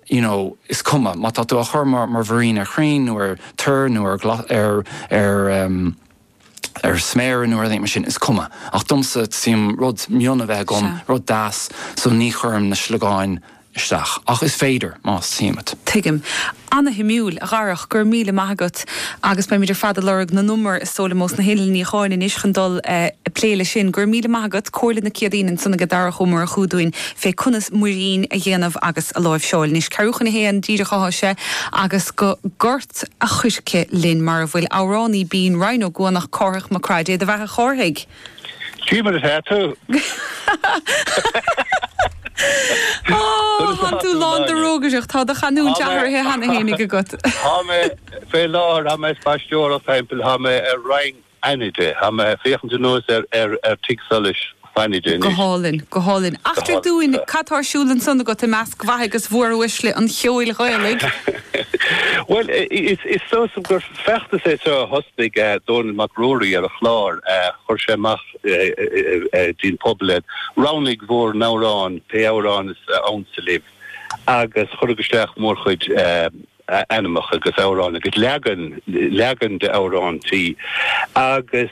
you know is cuma má tá tú á chur mar mar mhuirín ar chrainn nó ar toir nó ar ar ar em ar sméara nó ar aon ní mar sin is cuma ach domsa is maith liom rud mion a bheith agam rud deas so ní chuirim na sliogáin isteach ach is féidir más maith leat. Tuigim. Ana-shuimiúil, a Dharach, go raibh míle maith agat agus beimid ar fad ag lorg na n-umar is dóigh liom ós na hinnill níocháin anois chun dul eh ag plé leis sin. Go raibh míle maith agat, comhairle na Céadaoin ansan agat Darach Ó Murchú dúinn. fé conas muirín a dhéanamh agus a láimhseáil. Anois, ceathrú chun a haon díreach atá sé agus go Gort a' Choirce linn, mar a bhfuil amhránaí binn Rinn Ó gCuanach, Cárthach Mac Craith. Dé do bheatha, a Chárthaigh! Cé mar atá tú? Ó, tánn tú lán de rógaireacht. Tá do chanúint athraithe cheana féinig agat. Tá mé, fé láthair, tá mé ag spaisteoireacht thimpeall. Tá mé ar Rinn. Fhánada. Tá mé ag féachaint anuas ar tigh solais Fhánada anois. Go hálainn, go hálainn. Eachtraigh dúinn cad atá ar siúl ansan agat i measc mhaithe agus mhóruaisle an cheoil Ghaelaigh. Bhuel, is dóigh liom gur feachtas é seo a thosnaigh Dónall Mac Ruairí ar a chlár. Chuir sé amach dtí'n pobal é, 'Roghnaigh bhur n-amhrán, pé amhrán is ansa libh' agus cuireadh isteach mórchuid. ainmneacha agus amhráin agus leagan, leagan d'amhráintí agus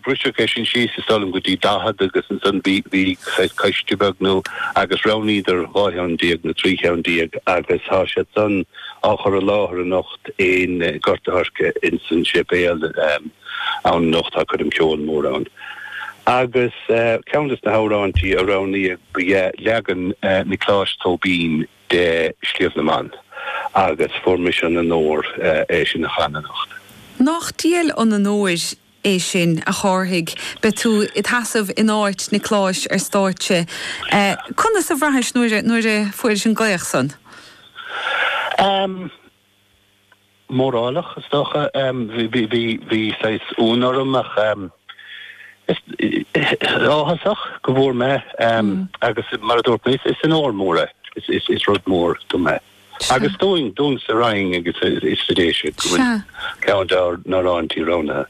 briseadh é sin síos is dóigh liom go dtí daichead agus ansan bhí, bhí saghas coiste beag nó, agus roghnaíodar dhá cheann déag nó trí cheann déag agus tá siad san á chur i láthair anocht in Gort a' Choirce ins an séipéal ann anocht, tá coirm cheoil mór ann. Agus ceann des na hamhráintí a roghnaíodh ba dh'ea leagan Niocláis Tóibín, de Shliabh na mBan, agus fuair mise an onóir é sin a chanadh anocht. Nách diail an onóir é sin, a Chárthaigh, beidh tú id sheasamh in áit Niocláis ar stáitse. Conas a bhraithis nuair a fuairis an glaoch san? mórálach, is dócha. Bhí saghas ionadh orm ach áthasach go bhfuair mé agus mar a dúirt mé, is onóir mhór é. Is rud mór dom é. Agus dúinn, dúinn sa Rinn agus sa Déise go bhfuil ceann dár n-amhráintí roghnaithe.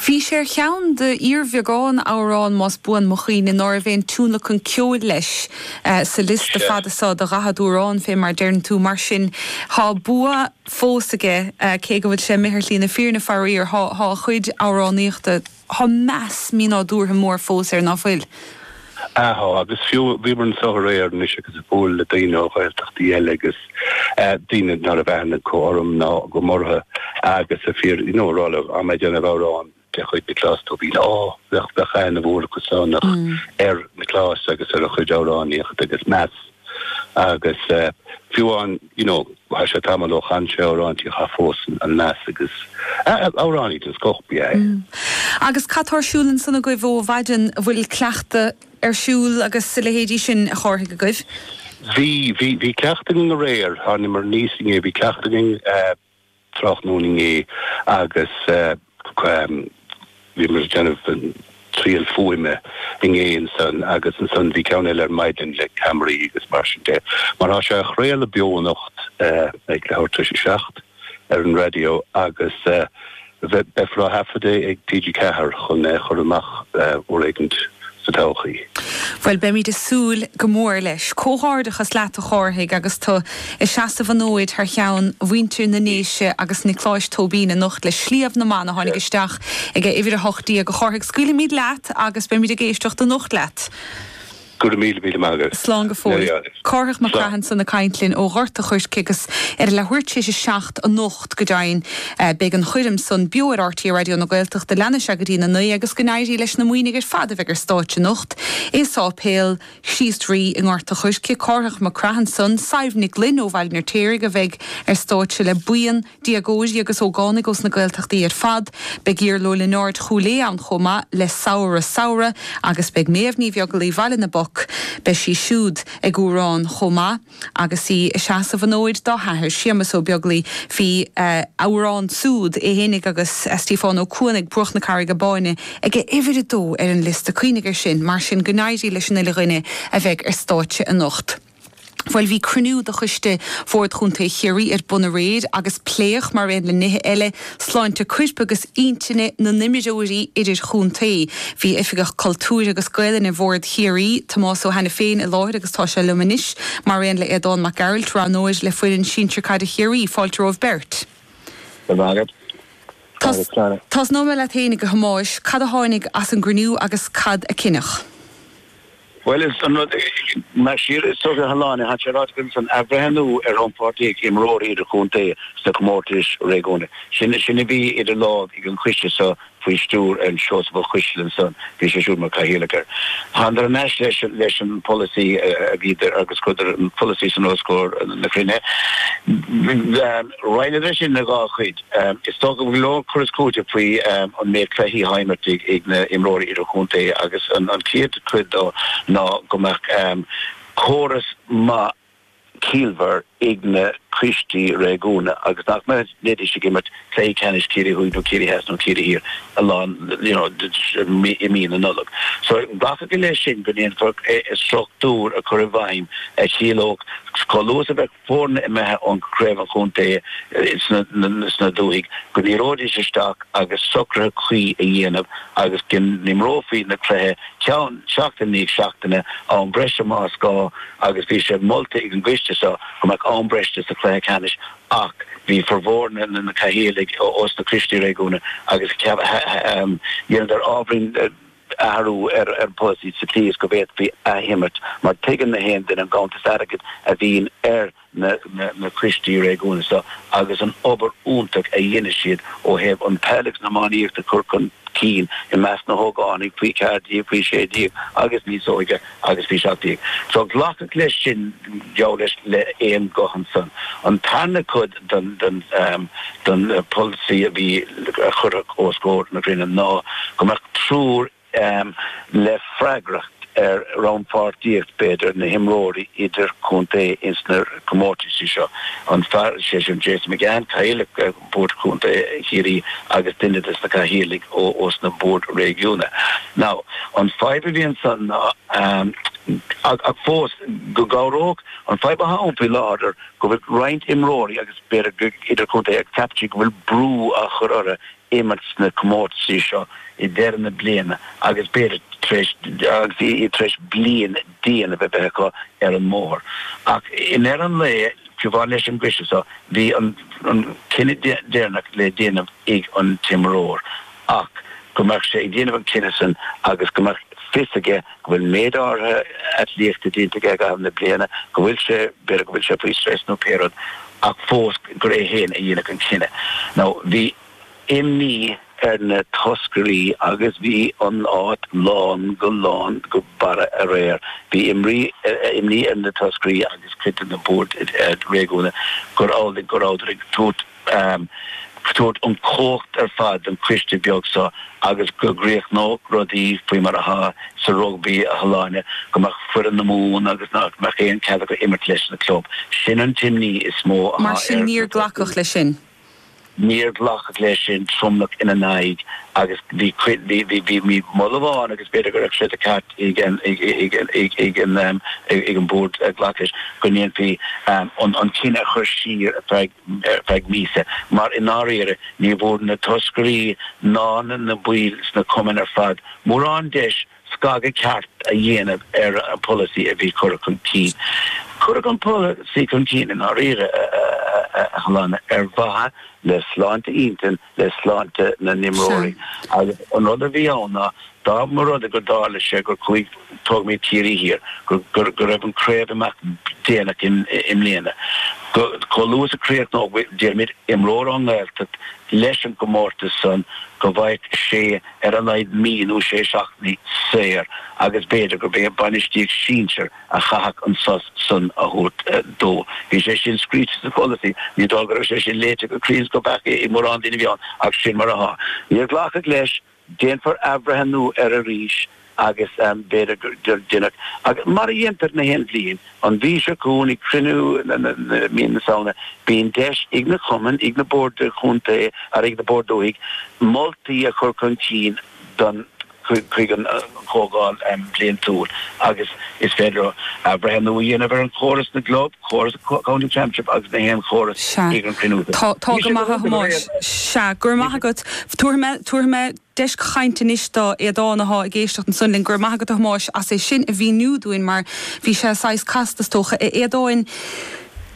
Bhí sé ar cheann d'fhíorbheagán amhrán, más buan mo chuimhne, ná raibh aon tionlacan ceoil leis sa liosta fada so de dhaichead amhrán, fé mar a deireann tú. Mar sin, tá bua fós aige, cé go bhfuil sé imithe ar shlí na fírinne. Faraor, tá a chuid amhránaíochta, tá meas mínádúrtha mór fós air, ná fuil? Tá, agus fiú, bhíomar anso aréir anois agus a' bualadh le daoine ó Ghaeltachtaí eile agus eh daoine ná raibh aithne acu orm ná agam orthu agus a' fiú, you know, a rá leo, tá mé a' déanamh amhrán de chuid Nioclás Tóibín, á, bheadh, bheadh aithne mhór acu san ach ar Nioclás agus ar a chuid amhránaíochta agus meas. Agus fiú amháin, you know, thá sé tamall ó chan sé amhráintí ach fós an meas agus amhránaí den scoth ba ea é. Agus cad tá ar siúl ansan agaibh ó mhaidean, bhfuil cleachtadh ar siúl agus a leithéidí sin, a Chárthaigh, agaibh? Bhí, bhí, bhí cleachtadh againn aréir, tháiniomar aníos inné, bhí cleachtadh againn. tráthnóna inné agus bhíomar ag déanamh triail fuaime inné ansan agus ansan bhí ceann eile ar maidin le ceamaraí agus mar sin de. Mar tá sé á chraoladh beo anocht ag leathuair tar éis a 7 ar an raidió agus. Beifear á thaifead é ag TG4 chun é a chur amach uair éicint sa todhchaí. Bhuel, beimid ag súil go mór leis. Comhghairdeachas leat, a Chárthaigh, agus tú ag seasamh an fhóid thar cheann mhuintir na nDéise agus Niocláis Tóibín anocht le Sliabh na mBan a tháinig isteach ag a uimhir 18. A Chárthaigh, scaoilfimid leat agus beimid ag éisteacht anocht leat. Go raibh míle míle maith agat. Slán go fóill. Cárthach Mac Craith ansan ag caint linn ó Ghort a' Choirce agus ar a leathuair tar éis a seacht anocht go deimhin. Beidh an choirm san beo ar RTÉ Raidió na Gaeltachta leanfaidh sé go dtí na naoi agus go n-éirí leis na Muimhnigh ar fad a bheidh ar stáitse anocht i Sáipéal Chríost Rí i nGort a' Choirce. Cárthach Mac Craith ansan. Sadhbh Nig Fhloinn ó Bhaile an Fheirtéaraigh a bheidh ar stáitse le buíon Déagóirí agus ógánaigh ós na Gaeltachtaí ar fad, beidh Iarla Ó Lionáird Chúil Aodha ann chomh maith le Samhradh Samhradh agus beidh Méabh Ní Bheaglaoi Bhaile na bPoc, beidh sí siúd ag amhrán chomh maith agus í ag seasamh an fhóid dá hathair Séamus Ó Beaglaoi, bhí a amhrán siúd, é fhéinig agus Stiofán Ó Cuanaigh, Bruach na Carraige Báine, ag a uimhir a dó ar an liosta, cuimhnigh ar sin, mar sin go n-éirí leis an uile dhuine a bheidh ar stáitse anocht. Bhuel, bhí cruinniú de choiste Bhord Chontae Chiarraí ar bun aréir agus pléadh, mar aon le nithe eile, sláinte coirp agus intinne na n-imreoirí idirchontae. Bhí Oifigeach Cultúir agus Gaelainne Bhord Chiarraí, Tomás Ó hAiniféin, i láthair agus tá sé liom anois, mar aon le Aodán Mac Gearailt, roghnóir le foireann Sinsear Caide Chiarraí. Fáilte romhaibh beirt. Go raibh maith agat. Tosnóidh mé leat fhéinig, a Thomáis. Cad a tháinig as an gcruinniú agus cad a cinneadh? Bhuel, is an rud é, más siar is socair a Shláine, tá sé ráite agat ansan athbhreithniú ar chompháirtíocht imreoirí idirchontae sna comórtais réigiúnacha, sin a bhí idir lámhaibh ag an choiste seo faoi stiúir an Seosamh Ó Coisdealbha ansan, bhí sé siúd mar Cathaoirleach air. Thánadar thar n-ais leis an pholasaí aréir agus chuireadar an pholasaí san os comhair na cruinnithe. Roinneadh é sin ina dhá chuid. Is dócha go bhfuil go leor cur is cúiteamh faoi an méid cluichí atá imeartha ag na h-imreoirí idirchontae agus an chéad chuid de ná go mbeadh córas maith ciallmhar ag na coistí réigiúna agus nach mbeidís ag imirt Cluichí Ceannais Chiarraí Thuaidh nó Chiarraí Theas nó Chiarraí Thiar a lán you know i mí na Nollag. So glacadh leis sin go ndéanfar struchtúr a chur i bhfeidhm a chiallódh go luath is a bheadh foirne imithe ón gCraobh an Chontae sna dúthaí, go n-éireoidís isteach agus socruithe cuí a dhéanamh agus go n-imreofaí na cluichí ceann seachtain i ndiaidh seachtaine am breise más gá agus bhí sé molta ag an gcoiste seo go mbeadh am breise sa chluiche ceannais ach bhí formhór na Cathaoirligh os na coistí réigiúna agus dhéanadar ábhairín athrú ar an pholasaí sa tslí is go bhféadfaí athimirt mar tuigeann na haon duine an ganntanas airgid a bhíonn ar na coistí réigiúna so agus an obair iontach a dheineann siad ó thaobh an peil agus an iománaíocht a chur chun cinn i measc na hógánaigh faoi 14, faoi 16 agus níos óige. agus bhí seacht déag. So glacadh leis sin, gheall leis, le aon ghuth ansan, an tarna cuid den, den, den pholasaí a bhí, a cuireadh os comhair an chruinnithe ná go mbeadh triúr le freagracht ar rannpháirtíocht, b'fhéidir, na himreoirí idir contae ins na comórtaisí seo. An fear, sé sin Jason McGahan, Cathaoirleach, Bord Contae Chiarraí agus duine de na Cathaoirligh ós na Boird Réigiúna. Now, an fadhb a bhí ansan ná, ach fós go gcabhródh, an fadhb atá ann faoi láthair go bhfuil roinnt imreoirí agus b'fhéidir idirchontae ag ceapaint go bhfuil brú á chur orthu imirt sna comórtaisí seo i deireadh na bliana agus b'fhéidir tar éis, agus iad tar éis bliain déanamh a bheith acu ar an mbóthar. Ach i ndeireadh an lae, i gcomhar leis an gcoiste so, bhí an cinneadh deireanach le déanamh ag an t-imreoir, ach go mbeadh sé ag déanamh an cinneadh san agus go mbeadh fios aige go bhfuil méid áirithe atlíochta déanta aige i gcaitheamh na bliana, go bhfuil sé, b'fhéidir go bhfuil sé faoi stress nó pé rud, ach fós gur é fhéin a dhéanfadh an cinneadh. Now bhí. imní ar na toscairí agus bhí an áit lán go lán go barra aréir. Bhí imní ar na toscairí agus cuid de na boird réigiúnacha gur amhlaidh go rabhadar ag tabhairt an chumhacht ar fad don choiste beag seo agus go gcríochnódh rudaí faoi mar atá sa rugbaí a Shláine, go mbeadh foireann na Mumhan agus nach mbeadh aon chead acu imirt leis na club. Sin an t-imní is mó atá ar na toscairí. Mar sin níor glacadh leis sin. Níor glacadh leis sin, tromlach ina n-aghaidh, agus bhí cuid, bhí moladh amháin agus b'fhéidir go raibh sé de cheart ag an bhord glacadh leis, go ndéanfaí an cinneadh a chur siar ar feadh míosa, mar i ndáiríre ní bhfuair na toscairí ná na baill ná na cumainn ar fad mórán deis scagadh ceart a dhéanamh ar an pholasaí a bhí curtha chun cinn. Cuireadh an polasaí chun cinn i ndáiríre ag Solan ar mhaithe le sláinte intinne, le sláinte na n-imreoirí. Agus an rud a bhí ann ná, dá mba rud é go dtarlódh sé gur chuaigh tógaimid Ciarraí Thiar, gur, go raibh an craobh ag imeacht déanach i mbliana, go, chomh luath is a chríochnódh, déarfaimid, imreoir ón nGaeltacht leis an gcomórtas san, go bhfaigheadh sé, ar a laghad mí nó sé seachtainí saor agus b'fhéidir gurb é an bhainistíocht sinsir a chaithfeadh an sos san a thabhairt dó. Bhí sé sin scríte sa pholasaí. Ní dóigh go raibh sé sin léite go cruinn is go beacht ag mórán daoine a bhí ann ach sin mar atá. Níor glacadh leis. Déanfar athbhreithniú air arís. agus b'fhéidir go ndéanfar, mar a dhéantar na haon bhliain, an mhí seo chugainn, ag cruinniú mhí na Samhna, bíonn deis ag na cumainn, ag na boird chontae agus ag na boird dúthaigh moltaí a chur chun cinn don chuig an chomhdháil bhliantúil agus is féidir leo athbhreithniú a dhéanamh ar an chóras na gclub, córas an county championship agus na haon chóras Sea. ag an chruinniú. Tá. Tá go maith, a Thomáis. Sea. Go raibh maith agat. Tabharfaidh mé. Tabharfaidh mé. deis chainte anois do Aodhán athá ag éisteacht ansan linn. Go raibh maith agat a Thomáis as é sin a mhíniú dúinn mar bhí sé saghas casta is dócha. A Aodháin.